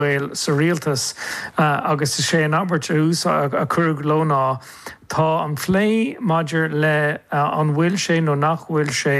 Gael sa rialtas agus is é an abairt a cuireadh leo ná, Tá an plé maidir le an bhfuil sé nó nach bhfuil sé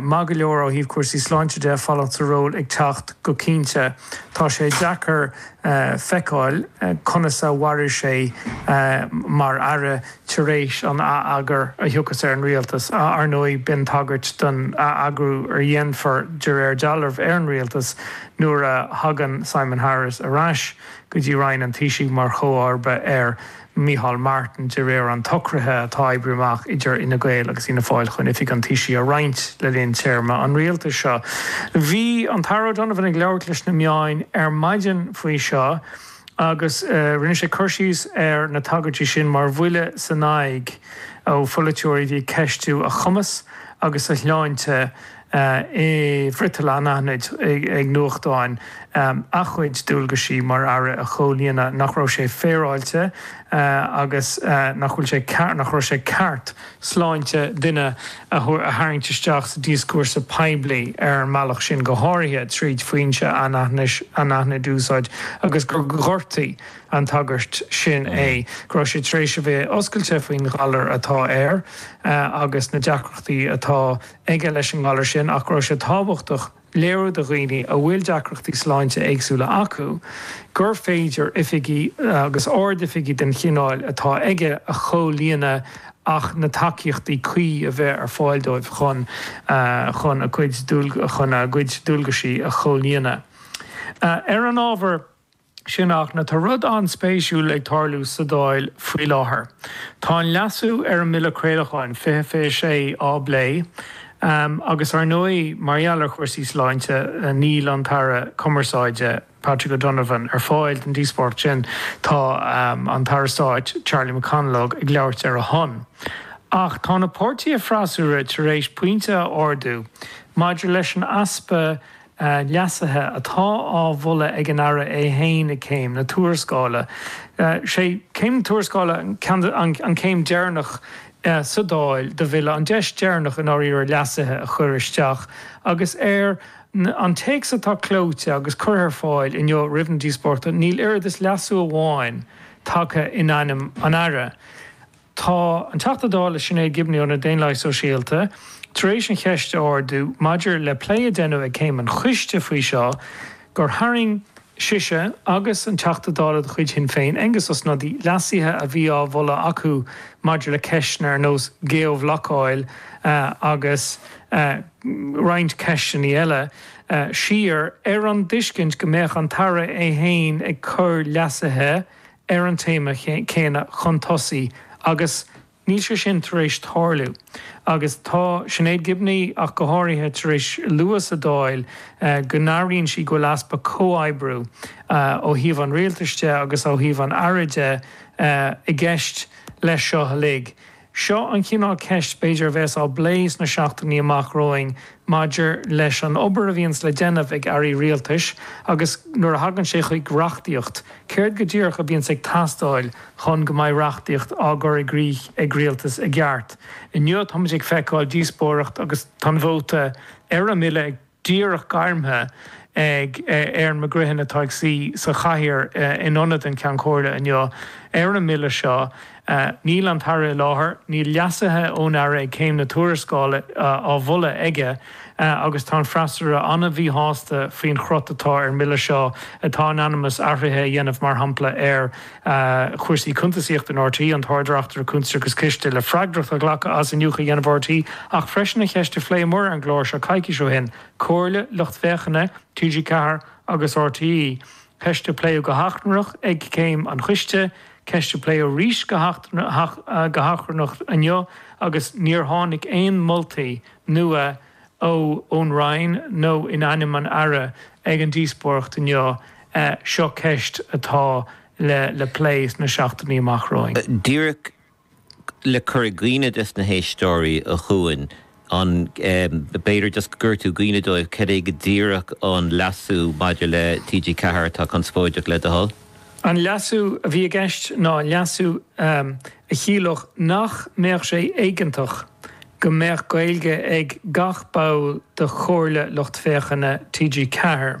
maith go leor ó thaobh cúrsaí sláinte de, fanacht sa ról ag teacht go cinnte. Tá sé deacair feiceáil conas a mhairfidh sé mar aire. tar éis an ath-eagair a thiocfas ar an Rialtas. Ar ndóigh, b'in tagairt don ath-eagrú a dhéanfar, de réir dealraimh, ar an Rialtas nuair a thagann Simon Harris ar ais go dtí Roinn an Taoisigh mar chomharba ar Mhicheál Martin, de réir an tsocraithe atá oibrithe amach idir Fhine Gael agus Fhianna Fáil chun oifig an Taoisigh a roinnt le linn téarma an Rialtais seo. Bhí an tAire O'Donovan ag labhairt leis na meáin ar maidin faoi seo, agus rinne sé cur síos ar na tagairtí sin mar bhuille san aghaidh ó pholaiteoirí a bhí ag ceistiú a chumas agus a shláinte i bhfriotal anaithnid ag nuachtáin a chuid dualgaisí mar Aire a chomhlíonadh, nach raibh sé féaráilte agus nach bhfuil sé nach raibh sé ceart. sláinte duine a tharraingt isteach sa díoscúrsa poiblí ar an mbealach sin, go háirithe tríd foinse anaithnid a úsáid, agus gur ghortaigh an tagairt sin é, go raibh sé tar éis a bheith oscailte faoin ghalar atá air agus na deacrachtaí atá aige leis an ngalar sin ach go raibh sé tábhachtach, léiriú do dhaoine a bhfuil deacrachtaí sláinte éagsúla acu gur féidir oifigí agus ardoifigí den chineál atá aige a chomhlíonadh ach na tacaíochtaí cuí a bheith ar fáil dóibh chun chun a gcuid dualgaisí a chomhlíonadh. Ar an ábhar. sin ach tá rud an-spéisiúil ag tarlú sa Dáil faoi láthair. Tá an leasú ar an mBille Craolacháin 2026 á phlé agus ar ndóigh mar gheall ar chúrsaí sláinte níl an tAire Cumarsáide, Patrick O'Donovan, ar fáil don díospóireacht sin. Tá an tAire Stáit, Charlie McConalogue, ag labhairt ar a shon. Ach tá na páirtithe freasúra tar éis pointe a ardú maidir leis an easpa leasuithe atá á mholadh ag an Aire é féin ag Céim na Tuarascála. Is é Céim na Tuarascála an chéim dheireanach sa Dáil do Bhille, an deis dheireanach i ndáiríre leasuithe a chur isteach, agus ar an téacs atá clóite agus curtha ar fáil inniu roimh na díospóireachta níl oiread is leasú amháin tagtha in ainm an Aire. Tá an Teachta Dála Sinéad Gibney ó na Daonlathaigh Sóisialta tar éis an cheist a ardú maidir le plé a deineadh ag Céim an Choiste faoi seo gur tharraing sise agus an Teachta Dála de chuid Shinn Féin, Aengus Ó Snodaigh, leasuithe a bhí á mholadh acu maidir le ceisteanna ar nós geo-bhlocáil agus roinnt ceisteanna eile siar ar an dtuiscint go mbeadh an tAire é féin ag cur leasuithe ar an téama céanna chun tosaigh agus níl sé sin tar éis tarlú agus tá Sinéad Gibney ach go háirithe tar éis lua sa Dáil go n-airíonn sí go bhfuil easpa comhoibriú ó thaobh an Rialtais de agus ó thaobh an Aire de i gceist leis seo uilig. Seo an chineál ceist b'fhéidir a bheas á bplé sna seachtainí amach romhainn maidir leis an obair a bhíonns le déanamh ag Airí Rialtais agus nuair a thagann sé chuig reachtaíocht, céard go díreach a bhíonns ag teastáil chun go mbeidh reachtaíocht á gcur i gcrích ag Rialtas i gceart. Inniu táimid ag feiceáil díospóireacht agus tá an vóta ar an mBille ag. díreach gairmthe ag Erin McGreehan atá ag suí sa chathaoir in ionad an Cheann Comhairle inniu ar an mBille seo. Níl an tAire i láthair, níl leasuithe ón Aire ag Céim na Tuarascála á mholadh aige agus tá an freasúra an-mhíshásta faoin chruth atá ar an mBille seo atá in ainm is athruithe a dhéanamh mar shampla ar chúrsaí cuntasaíochta in RTÉ, an tArd-Reachtaire Cuntas agus Ciste, le freagracht a ghlacadh as iniúchadh a dhéanamh ar RTÉ, ach freisin an cheist a phléamar ar an gclár seo coicís ó shin, comhairle lucht féachana TG4 agus RTÉ, ceist a pléadh go hachrannach ag Céim an Choiste, ceist a pléadh arís go hachrannach inniu agus níor tháinig aon moltaí nua ná. ón Roinn nó in ainm an Aire ag an díospóireacht inniu, seo ceist atá le plé sna seachtainí amach romhainn. Díreach le cur i gcuimhne dos na héisteoirí a Chuain, an b'fhéidir just go gcuirfeá i gcuimhne dóibh cad é go díreach an leasú maidir le TG4 atá conspóideach le do thoil? An leasú a bhí i gceist ná leasú a chiallódh nach mbeadh sé éigeantach go mbeadh Gaeilge ag gach ball de Chomhairle Lucht Féachana TG4.